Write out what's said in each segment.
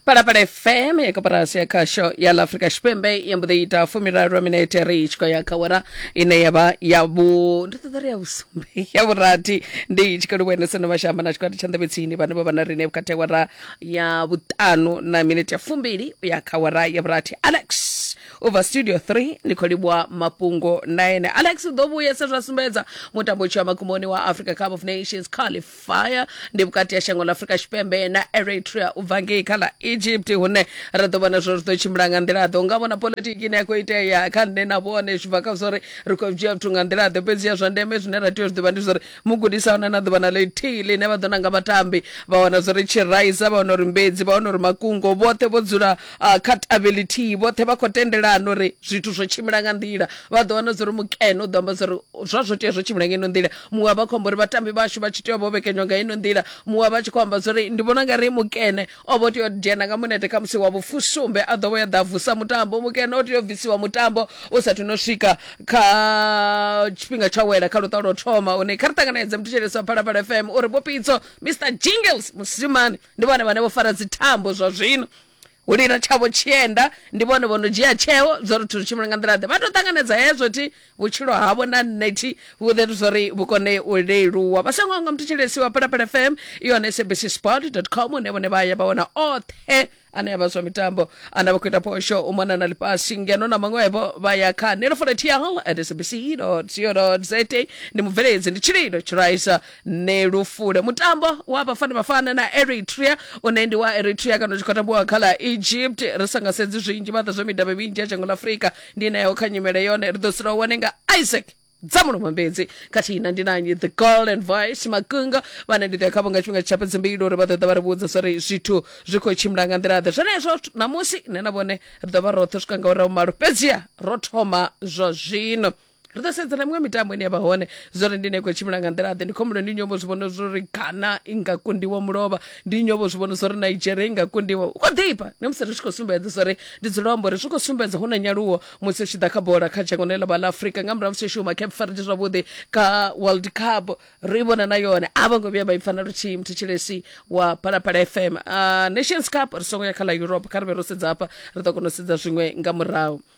palapala fm ya koporasi ya khasho ya la afrika tshipembe ya mbo ḓi ita fumiraru minete ri tshi khou ya kha wara ine ya vha ya vhu ndi ṱoḓa ri ya vhusumbe ya vhurathi ndi tshi khou livhuenesa na vhashamba na tshikwati tsha nḓevhetsini vhane vha vha na rine vhukati ha wara ya vhuṱanu na minete ya fumbili u ya kha wara ya vhurathi alex u bva studio 3 ndi khou livhuwa mafhungo na ene alex u ḓo vhuyesa zwa sumbedza mutambo u tshi wa makumoni wa africa cup of nations qualif fire ndi vhukati ha shango ḽa afurika tshipembe na eritrea u bva ngei kha ḽa egypt hune ra ḓo vhona zwo ri ḓo tshimbila nga nḓila ḓo nga vhona politiki ine ya khou itea kha nṋe na vhone zwi bva kha zwa uri ri khou dzhia zwithu nga nḓila ḓo fhedzi ya zwa ndeme zwine ra tea u zwi ḓivha ndi zwa uri mugudisi ahuna na ḓuvha na ḽithihi ḽine vha ḓo nanga vhatambi vha wana zwa uri tshiraisa vha wana uri mbedzi vha wana uri makungo vhoṱhe vho dzula Uh, kha tavhe lithihi vhoṱhe vha khou tendelana uri zwithu zwo tshimbila nga nḓila vha ḓo wana zwa uri mukene u ḓo amba zwa uri zwa zwo tea zwo tshimbila nga ino nḓila muṅwe a vha khou amba uri vhatambi vhashu vha tshi tea vho vhekenywa nga ino nḓila muṅwe a vha tshi khou amba zwa uri ndi vhona nga ri mukene o vho tea u dzhena nga munete kha musi wa vhufusumbe a ḓo vho ya ḓa vusa mutambo mukene o tea u bvisiwa mutambo u sathu no swika kha tshifhinga tsha wela kha luṱa lwo thoma une kha ri ṱanganedze muthu tshelesa phalaphala fm uri bopitso mr jingles musimani ndi vhone vhane vho fara dzithambo zwa zwino u lila tshavho tshienda ndi vhone vho no dzhia tsheo zwo ri thu tshimbile nga nḓila ḓe vha tou ṱanganedza hezwo thi vhutshilo havho na nṋe thi vhuḓetu zwo ri vhu kone u leluwa vha songo nga muthetsheleisi wa phalaphala fm i hone sabc sport dot com hune vhone vha ya vha wana oṱhe ane avha zwa mitambo ana vha khou ita phosho u mona na ḽifhasi ngeno na maṅwevho vha ya kha nelofolathiyal at sabc co za ndi mubveledzi ndi tshililo tshiraisa ni lu fule mutambo wa vhafana vhafana na eritrea une ndi wa eritrea kana u tshi khou tambiwa kha ḽa egypt ri sa nga sedzi zwinzhi vhaḓa zwa midavhi minzhi ya dzhango ḽa afurika ndi nayo kha nyimele yone ri ḓo sula u wane nga isaac dzamuno mambedzi khathihi na ndi nanyi the golden voice makungo vhane ndi ḓo ya khavho nga tshifhinga tsha fhedzi mbili uri vha ḓo ḓa vha ri vhudza zwa uri zwithu zwi khou tshimbila nga nḓila ḓe zwenezwo ṋamusi nṋe na vhone ri ḓo vha roṱhe swika nga urahu malo fhedziha ro thoma zwa zwino ri ḓo sedza na miṅwe mitambo ine ya vha hone zwori ndi ne khou tshimbila nga nḓila ḓe ndi khombulo ndi nyovho zwi vhona zwori ghana i nga kundiwa mulovha ndi nyovho zwi vhona zwori nigeria i nga kundiwa u khou ḓifha na musi ri tshi khou sumbedza zwori ndi dzula amba uri zwi khou sumbedza hu na nyaluwo musi u tshi ḓa kha bola kha dzhango ḽe ḽa vha ḽa afrika nga murahu musi shuma cape verde zwavhuḓi kha world cup ri vhona na yone a vho ngo vhuya vha i pfa na luthihi muthu tshilesi wa phalaphala fm uh, nations cup ri songo ya kha ḽa europe kha ri vhe ro sedza hafha ri ḓo kona u sedza zwiṅwe nga murahu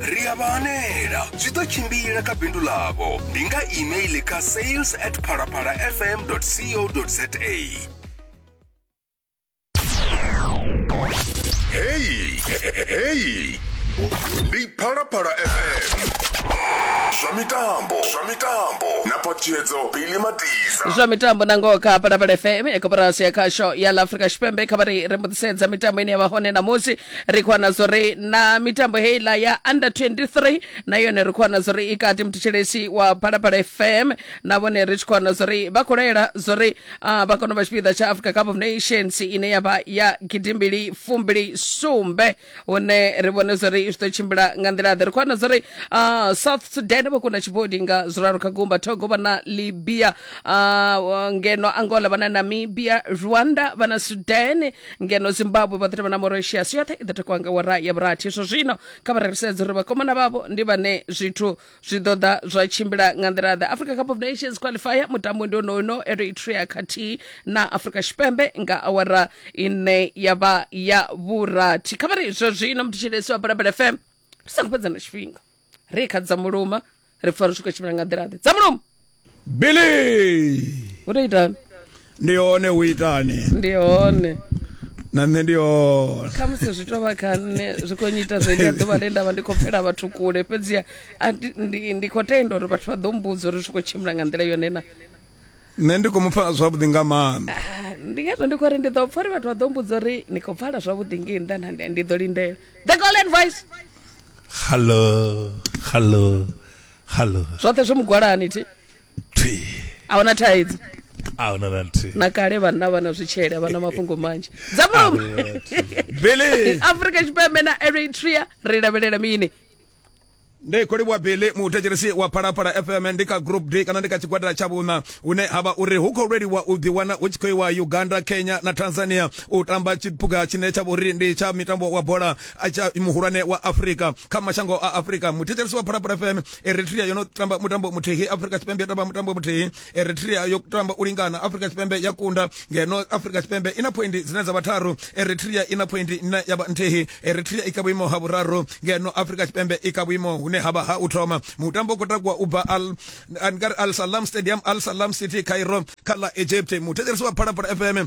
ri a vha hanela zwi ḓo tshimbila kha bindu ḽavho ndi nga email kha sales at phalaphalafm co za heyi heyi ndi phalaphala fm zwa mitambo zwa mitambo na patshedzo bili matisa zwa mitambo na ngoho kha phalaphala fm ya koporasi ya khasho ya la afrika tshipembe kha vha ri ri mbuḓisedza mitambo ine ya vha hone ṋamusi ri khou wana zwo ri na mitambo heiḽa ya under 23 na yone ri khou wana zwo ri i kati muthetshelesi wa phalaphala fm na vhone ri tshi khou wana zwo ri vha khou laela zwo ri ah, vha kone u vha tshipiḓa tsha africa cup of nations ine ya vha ya gidimbili fumbili sumbe hune ri vhone zwo ri zwi ḓo tshimbila nga nḓila ḓe ri khou wana zwo ri ah, south sudan vho kunda tshibodi nga zwiraru kha gumba togo vha na libya ah, ngeno angola vha na namibia rwanda vha na sudan ngeno zimbabwe vhaḓirema na moratius yoṱhe i ḓo takuwa nga wara ya vhurathi zwo zwino kha vha rerisedza uri vhakomana vhavho ndi vhane zwithu zwi ḓo ḓa zwa tshimbila nga nḓila ḓe africa cup of nations qualifier mutambo ndi onono eritrea khathihi na afrika tshipembe nga awara ine ya vha ya vhurathi kha vha ri zwo zwino mthetshelesi wa balabala fm ri songo fhedza na tshifhinga ri kha dza muluma ri pfa ri tshi khou tshimbila nga nḓila ḓe dza muluma billy u tou itani ndi hone u itani ndi hone na nṋe ndi hone kha musi zwi tou vha kha nṋe zwi khou nyiita zwo itea ḓuvha ḽe nda vha ndi khou pfela vhathu kule fhedziha a ndi- ndi ndi khou tenda uri vhathu vha ḓo mbudza uri zwi khou tshimbila nga nḓila yone na nṋe ndi khou mu pfala zwavhuḓi nga maanḓa ah, ndi ngazwo ndi khou ri ndi ḓo pfa uri vhathu vha ḓo mbudza uri ni khou pfala zwavhuḓi ngei nda na ndi ḓo lindela the golden voice hallo hallo hallo zwoṱhe zwi mugwalani thi thi a huna thaidzo a huna na nthihi na kale vhanna vha na zwitshele vha na mafhungo manzhi dza mama afrika tshipembe na eritrea ri lavhelela mini ndi khou livhuwa billy muthetshelesi wa phalaphala fm ndi kha group d kana ndi kha tshigwadela tsha vhuṋa hune ha vha uri hu khou lweliwa u ḓiwana hu tshi khou iwa uganda kenya na tanzania u tamba tshiphuga tshine tsha vhori ndi tsha mitambo wa bola tsha muhulwane wa afurika kha mashango a afurika muthetshelesi wa phalaphala fm eritrea yo no tamba mutambo muthihi afurika tshipembe yo tamba mutambo muthihi eritrea yo tamba u lingana afrika tshipembe ya kunda ngeno afrika tshipembe i na phoindi dzine dza vha tharu eritrea i na phoindi ine ya vha nthihi eritrea i kha vhuimo ha vhuraru ngeno afrika tshipembe i kha vhuimo hune ha vha ha u thoma mutambo u khou takuwa u bva al salam stadium al salam city cairo kha ḽa egypt muthetshelesi wa phalaphala fm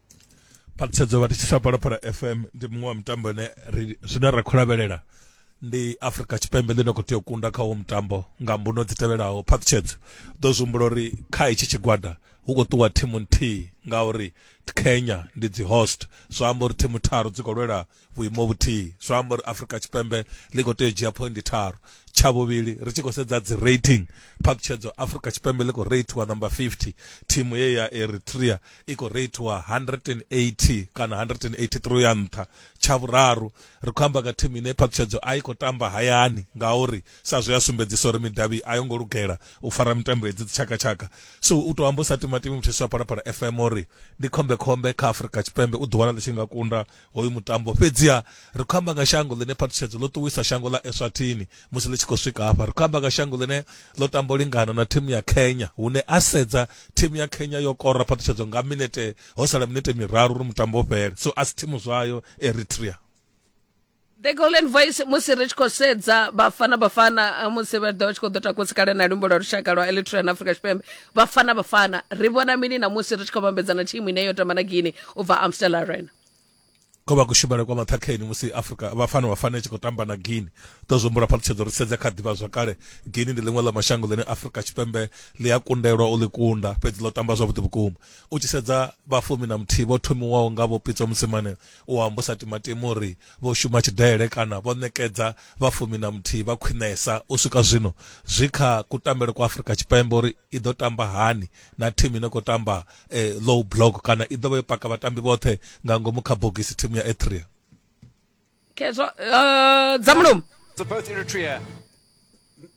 phaṱhutshedzo vha thetshelesa phalaphala fm ndi muṅwe wa mitambo ine ri zwine ra khou lavhelela ndi afrika tshipembe ḽine khou tea u kunda kha uwo mutambo nga mbuno dzi tevhelaho phaṱhutshedzo ḓo zwi humbula uri kha hetshi tshigwada hu khou ṱuwa thimu nthihi ngauri kenya ndi dzi host zwa amba uri thimu tharu dzi khou lwela vhuimo vhuthihi zwo amba uri afrika tshipembe ḽi khou tea u dzhia phoindi tharu tsha vhuvhili ri tshi khou sedza dzi rating phaṱhutshedzo afrika tshipembe ḽi khou reitiwa number 50 thimu ye ya eritrea i khou reitiwa 180 kana 183 ya nṱha tsha vhuraru ri khou amba nga thimu ine phaṱhutshedzo a i khou tamba hayani ngauri sa zwe ya sumbedzisa uri midavhi a yo ngo lugela u fara mitambo hedzi dzitshakatshaka so u tou amba u sa timatimi muthiso wa palapala fm uri ndi khombekhombe kha afrika tshipembe u ḓiwana ḽi tshi nga kunda Hoyu mutambo fhedziha ri khou amba nga shango ḽine phaṱhutshedzo ḽo ṱuwisa shango ḽa Eswatini musi ḽi tshi khou swika hafha. Ri khou amba nga shango ḽine ḽo tamba u lingana na thimu ya Kenya hune a sedza thimu ya Kenya yo kora phaṱhutshedzo nga minete ho sala minete miraru uri mutambo u fhele. So a si thimu zwayo Eritrea. The Golden Voice musi ri tshi khou sedza Bafana Bafana eh, musi vha ḓo tshi khou ḓo takusa kale na lumbo lwa lushaka lwa Eritrea na Afrika Tshipembe Bafana Bafana ri vhona mini na musi ri tshi khou vhambedzana thimu ine yo tamba na Guinea u bva Amstel Arena ko vha kushumele kwa maṱhakheni musi afrika vhafana vhafana tshi khou tamba na guini to zwi humbula phaṱhutshedzo ri sedze kha ḓivha zwakale guini ndi ḽiṅwe ḽa mashango ḽine afrika tshipembe ḽi a kundelwa u ḽi kunda fhedzi ḽo tamba zwavhuḓi vhukuma u tshi sedza vhafumi na muthihi vho thomiwaho nga vho pitso musimane U amba u sa timatimi uri vho shuma tshidele kana vho ṋekedza vha fumi na muthihi vha khwiṋesa u swika zwino zwi kha kutambele kwa Afrika Tshipembe uri i ḓo tamba hani na thimu ine khou tamba low block kana i ḓo vha yo paka vhatambi vhoṱhe nga ngomu kha bogisi thimu ya Eritrea. Khezwa dza mulomo.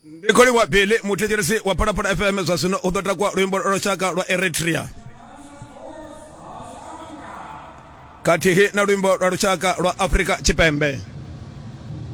ndi kholiwa billy muthetshelesi wa phalaphala fm zwa zwino u ḓo takwa luimbo lwa lushaka lwa eritrea khathihi na luimbo lwa lushaka lwa afrika tshipembe